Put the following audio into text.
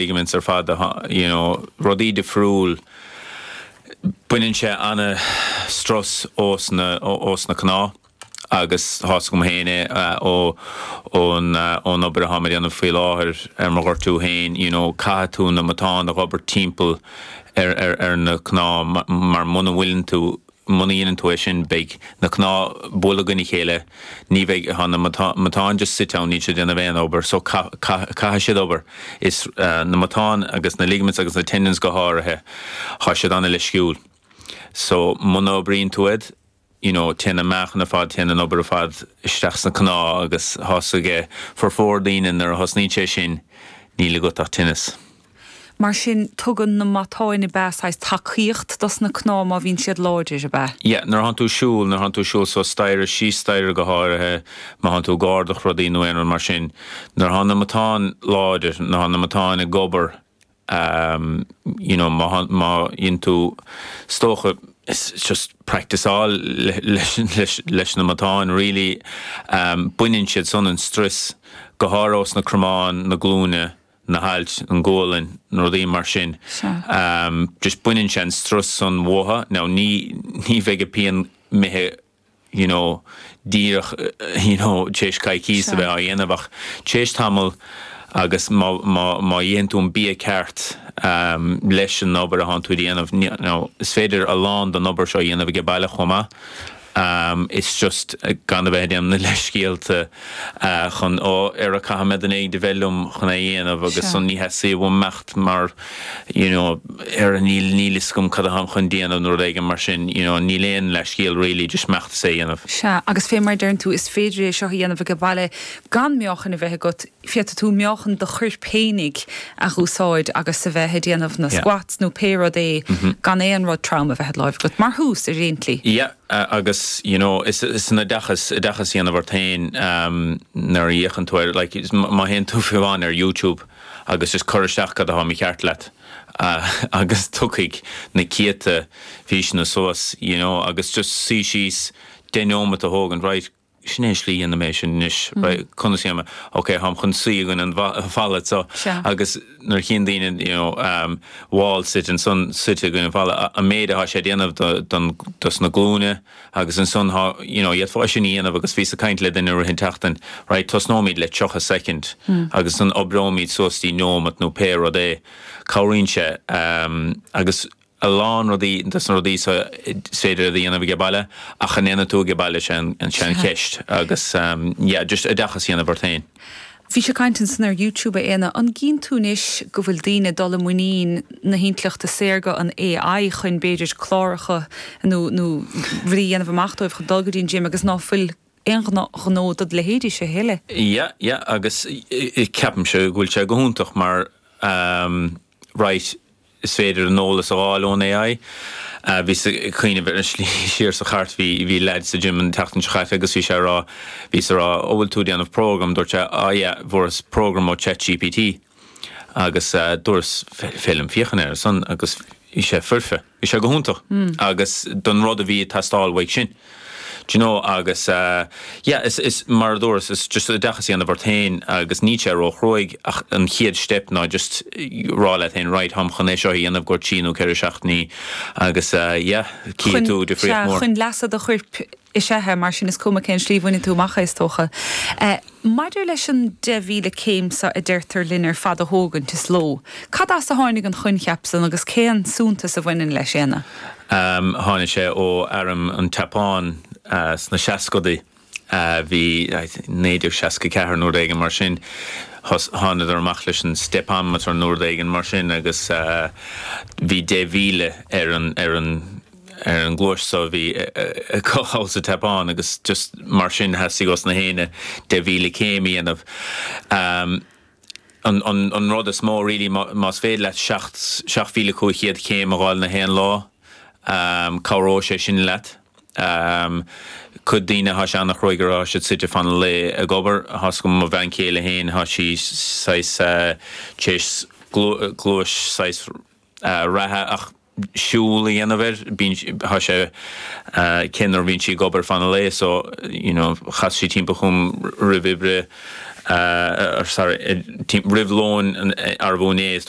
ligaments ar fad you know rudaí difriúil baineann sé an strus ós na ós na cnámha agus thá a fhios agam féin é ó ón ón obair atá mé ag déanamh faoi láthair ar mo ghortú féin you know caithfidh tú na matáin a dh'obairt timpeall ar ar ar na cnámha mar muna bhfuileann tú Muna dhéanann tú é sin, beidh na cnámha ag bualadh i gcoinne a chéile, ní bheidh, thá na matáin just suite ann, níl siad ag déanamh aon obair, so caithfidh siad obair. Is na matáin agus na ligaments agus na tendons go háirithe, thá siad an-leisciúil. So muna oibríonn tú iad, you know, téann an meáchan ar fad, téann an obair ar fad isteach sna cnámha agus thá a fhios aige formhór daoine nuair a thosnaíonn sé sin, níl agat ach tinneas. Mar sin, tugann na matáin ab ea saghas tacaíocht dos na cnámha má bhíonn siad láidir, ab ea? Yeah, nuair a thánn tú ag siúl, nuair a thánn tú ag siúl suas staighre, síos staighre go háirithe, má thánn tú ag ardach rudaí nó aon rud mar sin, nuair a thánn na matáin láidir, nuair a thánn na matáin ag obair, ehm, you know, má thánn, má dhéanann tú, is dócha, is just practice-áil leis, leis, leis na matáin really, ehm, baineann siad san an strus, go háirithe ós na cromáin, na glúine. na hailt, an ghualainn, na rudaí mar sin. Sea. Just baineann sé an strus san uatha. Now ní, ní bheidh a' pian imithe you know, díreach you know, téis coicíos a bheith á dhéanamh ach téis tamall agus má, má, má itheann tú an bia ceart leis an obair a thánn tú a' déanamh, now is féidir a lán don obair seo a dhéanamh aige baile chomh maith. Um, it's just, gan a bheith ag déanamh na leithscéalta, ah, chun, oh, ara caithfidh mé duine éigint a bheith liom chun é dhéanamh agus Sure. ansan ní theastaíonn uaim imeacht mar, you know, ara níl, níl 'fhios agam cad a tháim chun déanamh nó rud éigin mar sin, you know, níl aon leithscéal really, just imeacht is é dhéanamh. Sea, agus fé mar a deireann tú, is féidir é seo a dhéanamh age baile gan meáchan a bheith agat, féadfaidh tú meáchan do chuirp fhéinig a dh'úsáid agus a bheith ag déanamh na squats nó pé rud é gan aon rud trom a bheith id láimh agat, mar thús, ar aon tslí. Yeah, agus you know, is san oideachas, oideachas a dhéanamh ort féin nuair a fhéachann tú ar, like, má théann tú fiú amháin ar YouTube agus just cur isteach cad atá mícheart leat agus tiocfaidh na céadta físeanna suas, you know, agus just suí síos deich neomat a thógaint, right, Sin é an slí dhéanaim é sin anois. Conas a dhéanaim é? Ok, táim chun suí i gcoinne an falla so, agus nuair a chíonn daoine, you know, wall sit ansan, suite i gcoinne an falla, an méid atá sé ag déanamh don, dos na glúine agus ansan tá, you know, iad fá sin a dhéanamh agus bhíos ag caint le duine i rith an tseachtain, right, tosnóimid le tríocha soicind agus ansan oibreoimid suas dtí neomat nó pé rud é. Cabhraíonn sé agus a lán rudaí des na rudaí so is féidir iad a dhéanamh ag baile ach an ndéanfaidh tú ag baile 'sé an 'sé an cheist agus yeah just oideachas a dhéanamh ort féin. Bhí sé ag caint ansan ar YouTube a Éanna, an gcíonn tú anois go bhfuil daoine dul i muinín na hintleachta saorga, an AI, chun b'fhéidir cláracha nó nó rudaí a dhéanamh amach dóibh chun dul go dtí an gym agus ná fuil aon ghnó do do leithéidse a thuilleadh? Yeah yeah agus ceapaimse go bhfuil sé go hiontach mar right, Is féidir an eolas a fháil ón AI. Bhíos ag cuimhneamh ar an slí siar sa chairt, bhí leaid sa gym an tseachtain seo chaite agus bhí sé ag rá, bhíos ag rá, ó bhfuil tú ag déanamh program? Dúirt sé, á yeah, fuaireas program ó ChatGPT. Agus dúras, féidir liom féachaint ar san agus bhí sé foirfe, bhí sé go hiontach. Agus don rud a bhí ag teastáil uaidh sin. Do you know, agus yeah, is, is, mar a dúras, is just oideachas a dhéanamh ort féin agus níl sé róchruaidh ach an chéad steip ná just rá leat féin, right, táim chun é seo a dhéanamh, i gcomhair trí nó ceithre seachtainí agus yeah, cífidh tú difríocht mór. Chun leasa do chuirp is ea é, mar sin is cuma cén slí a bhaineann tú amach é, is dócha. Maidir leis an 10,000 céim seo a deirtear linn ar fad a thógaint sa ló. Cad as a tháinig an coincheap san agus cén suntas a bhaineann leis, Éanna? Tháinig sé ó am an tSeapáin sna seascadaí. Bhí, 1964 nó rud éigin mar sin, thánadar amach leis an stepometer nó rud éigin mar sin agus bhí 10,000 ar an, ar an ngléas so bhí acu thall sa tSeapáin agus just mar sin theastaigh ós na héinne deich míle céim a dhéanamh. Am, an, an, an rud is mó really má, más féidir leat seacht, seacht míle cúig chéad céim a dháil na haon lá, am, cabhróidh sé sin leat. Am, cuid daoine thá sé an-chruaidh orthu, thá siad suite fan an lae ag obair, thá ar cuma mo bhean chéile féin thá sí saghas eh, tar éis glé, gléas saghas, reatha ach siúl a dhéanamh air. Bíonn, tá sí, toisc ná bíonn sí ag obair fan an lae so you know chas sí timpeall chugam roimh oibre, or sorry, roimh lóin arú inné is dúirt